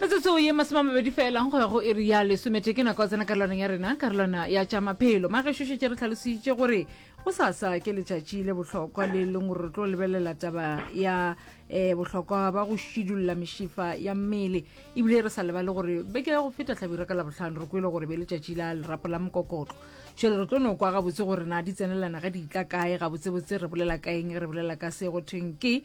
metsotso ye masome a mabedi felang go ya go iri ya lesomete ke nako tsena karolwana ya rena karolwana ya tša maphelo magešošetse re tlhalositše gore go sasa ke letšatši le bohlokwa le leng gore re tlo lebelela taba ya um bohlokwa ba go šidulla mešifa ya mmele ebile re sa lebale gore beke ya go feta tlhabira ka labohlano re kwele gore be letšatši la lerapo la mokokotlo šele re tlo no kwa gabotse gore na di tsenelana ga di itla kae gabotsebotse re bolela kaeng re bolela ka se go thweng ke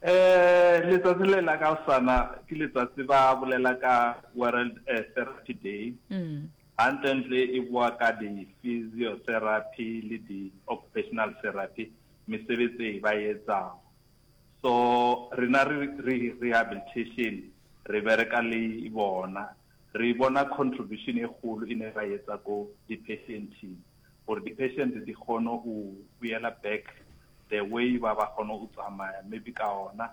Letsatsi le la ka osana ke letsatsi ba bolela ka World eh, Therapy Day gantlentle mm. e boa ka di-physiotherapy le di-occupational therapy mesebetsi e ba etsang so rena re rehabilitation re bereka le bona Re bona contribution e kgolo e ne ra etsa ko di patienting gore di patient di kgone u boela back the way ba ba kgone u tsamaya maybe ka ona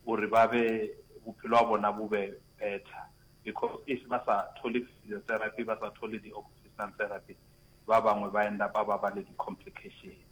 gore ba be bophelo ba bona bo be better because if ba sa thole physiotherapy ba sa thole di occupational therapy ba bangwe ba end up ba ba le di complication.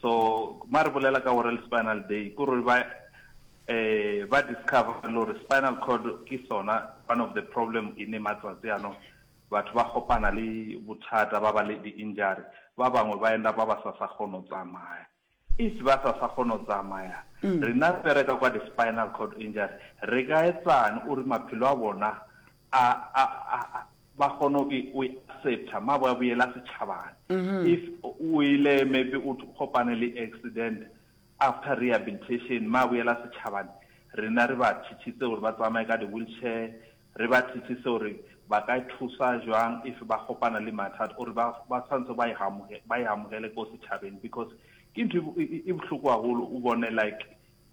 So ma re bolela ka gore le spinal day ko re ba eh ba discover le gore spinal cord ke sona one of the problem e ne matsatsi ano batho ba kopana le bothata ba ba le di injury ba bangwe ba enda ba ba sa sa kgono tsamaya if ba sa sa kgono tsamaya mm. rena bereka kwa di spinal cord injury re ka etsang o re maphelo a bona A, a, a, a, ba kgona go e, go e accepta, mabo ya boela setšhabana. If o ile maybe o t- kopane le accident, after rehabilitation, ma boela setšhabane, rena re ba thithise gore ba tsamaye ka di-wheelchair, re ba thithise gore ba ka thusa jwang if ba kopana le mathata, or ba, ba tshwanetse ba e amoge, ba e amogele ko setšhabeng, because ke ntho e bo- e, e, e bohloko haholo, o bone like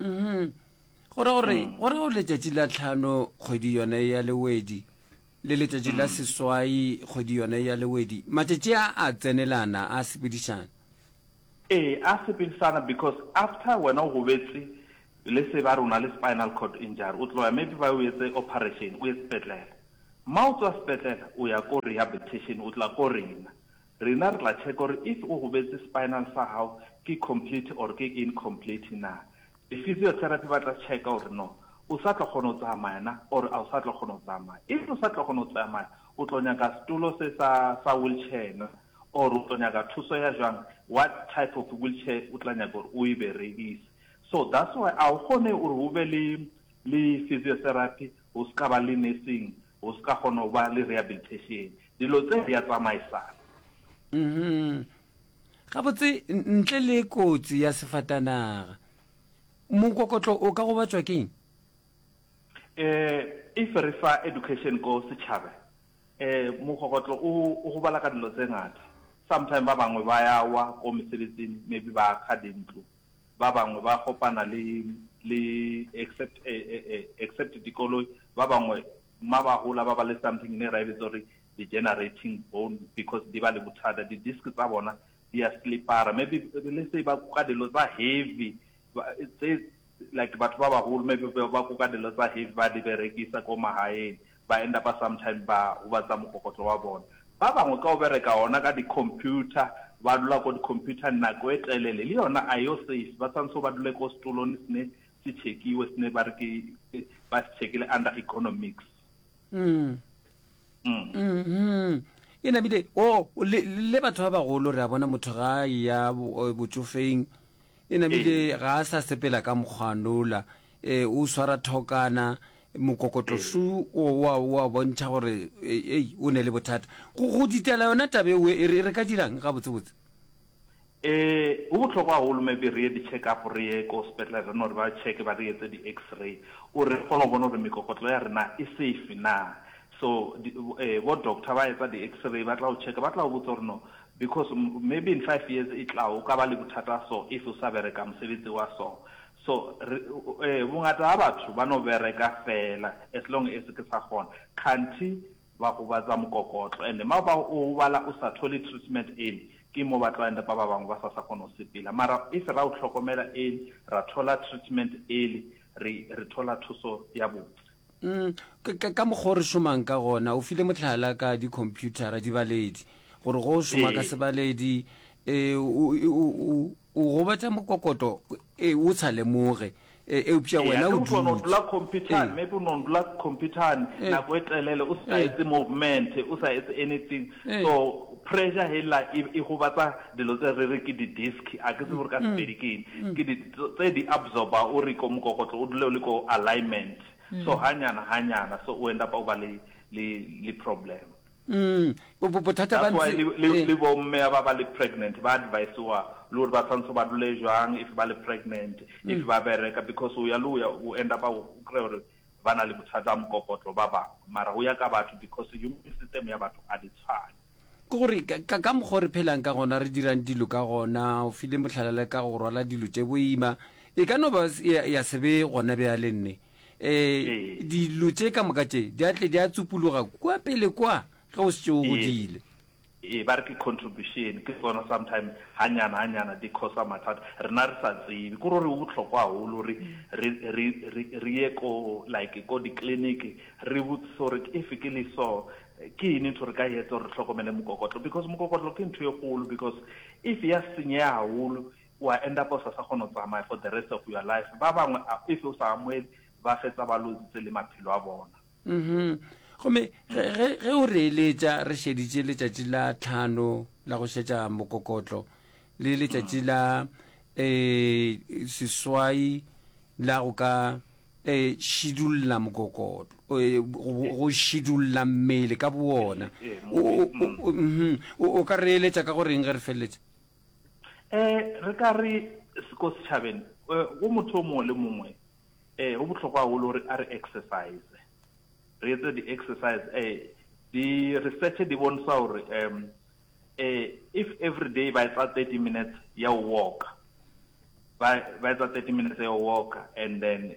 mm-hmm. gore gore mm. gore o letšatši la tlhano kgwedi yone ya lewedi le letšatši la mm. seswai kgwedi yone ya lewedi matšatši a a tsenelana a sepedišana ee a sepedišana because after wena o gobetse le se ba rona le spinal cord injury o tloya maybe ba o etse operation o ye sepetlele ma o tswa sepetlele o ya ko rehabilitation o tla ko rena Rena re tla check gore if o gobetse spinal sa gago ke complete or ke incomplete na. Di physiotherapy ba tla checka gore no o sa tlo kgona go tsamaya na or a o sa tlo kgona go tsamaya. If o sa tlo kgona go tsamaya o tlo nyaka setulo se sa sa wheelchair na or o tlo nyaka thuso ya jwang, what type of wheelchair o tla nyaka gore o e berekise. So that's why a o kgone gore o be le le physiotherapy O se ka ba le nursing, o se ka kgona go ba le rehabilitation. Dilo tse di a tsamaisana. Uhum. Gabotse, ntle le kotsi ya sefatanaga, mokokotlo o ka gobatšwa ke eng? Eh, if re fa education ko setšhabe, eh, mokokotlo o, o gobala ka dilo tse ngata. Sometime ba bangwe ba ya wa ko mesebetsing, maybe ba kga dintlo. ba bangwe ba kopana le, le, except, e, e, e, except dikoloi, ba bangwe ma ba hola ba ba le something ne ra e bitsa gore di-generating bone because di ba le bothata, di-disc tsa bona di a slipara, maybe le se ba kuka dilo tsa heavy, tse, like batho ba baholo maybe ba kuka dilo tsa heavy ba di berekisa ko magaeng, ba enda ba sometime ba gobatsa mokokotlo wa bona. Ba bangwe ka go bereka gona ka di-computer, ba dula ko di-computer nako e telele, le yona a yo safe, ba swanso ba dule ko setolone sene se chekiwe, sene ba re ke ba se chekile under economics. Mm. Mm. Mm-hmm. e nabile o oh, le, le batho ba bagolo re a bona motho ga ya botsofeng e nabile ee. ga a sa sepela ka mokgwanola E, o swara thokana mokokotlosu o wa wa bontšha gore e, ei o ne le bothata go go ditela yona tabe o e re ka dirang ga botse botse e go botlhokwa go lome be re ye di check up re ye ko sepetlele re no re ba check ba re etse di x-ray o re kgone go bona gore mekokotlo ya rena e safe na so e bo doctor ba etsa di x-ray ba tla go check ba tla go botsa gore no because maybe in 5 years e tla o ka ba le bothata so if o sa bereka mosebetsi wa so So re, eh, bongata ba batho ba no bereka fela as long as ke sa kgona. Kganthi ba gobatsa mokokotlo and ma ba o bala o sa thole treatment early ke mo ba tlo end up ba bangwe ba sa sa kgona go sepela. Mara if ra o tlhokomela early, ra thola treatment early, re re thola thuso ya botse. Umm, ka, ka, ka mokgwa o re šomang ka gona, o file mohlala ka dikhomphuthara, dibaledi, gore go šoma ka Ee. sebaledi, eh, o, o, o, o, o gobatša mokokoto e o sa lemoge e, eupša Ee, wena ate o o tšwa no dutše dula computer-ng, Ee. maybe o no dula computer-ng Ee. nako e telele o sa Ee. etse movement, o sa etse anything. Ee. So pressure hela e e gobatsa dilo tse re re ke di-disc, a ke tsebe gore ka Sepedi ke eng. Ke di tse di absorber o re ko mokokotlo o dule o le ko alignment. So hanyana hanyana, so o end up o ba le le le problem. That's why le bo mme ba ba ba le pregnant ba advise-wa le gore ba santse ba dule jwang if ba le pregnant, if ba bereka because o ya le o ya o end up-a o kry-e gore ba na le bothata ba mokokotlo ba bangwe. Mara go ya ka batho because human system ya batho ga di tshwane. Ke gore ka mokgwa o re phelang ka gona, re dirang dilo ka gona, o file mohlala le ka go rwala dilo tše boima, e ka no ba ya se be gona bjale nne. um dilo tše ka moka tše di atle di a tsupologa kwa pele kwa ge o setse o godile e ba re ke contribution ke tsona sometimes hanyana hanyana di khosa mathata rena re sa tsebe ko re botlhokwa haholo re re re re re ye ko like ko di clinic re botse so re if ke le so ke ene ntho re ka etsa re hlokomele mokokotlo because mokokotlo ke ntho e kgolo because if ya senyeha haholo o a end up-a o sa sa kgona go tsamaya for the rest of your life. Ba bangwe a if o sa amohele ba fetsa ba lozitse le maphelo a bona. Uhmm. Gomme ge, ge, ge o re eletša re šeditše letšatši la tlhano la go šetša mokokotlo le letšatši la, ee, seswai la go ka, ee, šidulla mokokotlo, ee, go, go šidulla mmele ka bowona. Ee, ee, moeng. O, o, o, uhmm. O, o ka re eletša ka go reng ge re feleletša? Eh, re ka re ko setšhabeng eh, go motho o mongwe le mongwe eh go bohlokwa gagolo gore a re exercise re etse di-exercise eh di-research di bontsha gore um eh if every day ba etsa thirty minutes ya go walka ba etsa thirty minutes ya go walka and then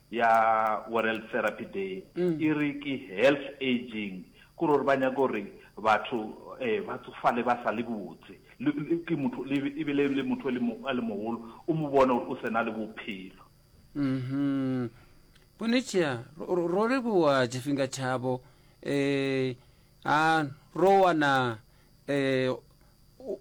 ya Woreld Therapy Day e re ke health aging, ke gore ba nyaka gore batho um ba tsofale ba sa le botse, ke motho e be le motho a le mogolo o mo bona gore o se na le bophelo. Mm-hmm. Bonetšea, ro leboa Jefinga Chabo. um a ro wana um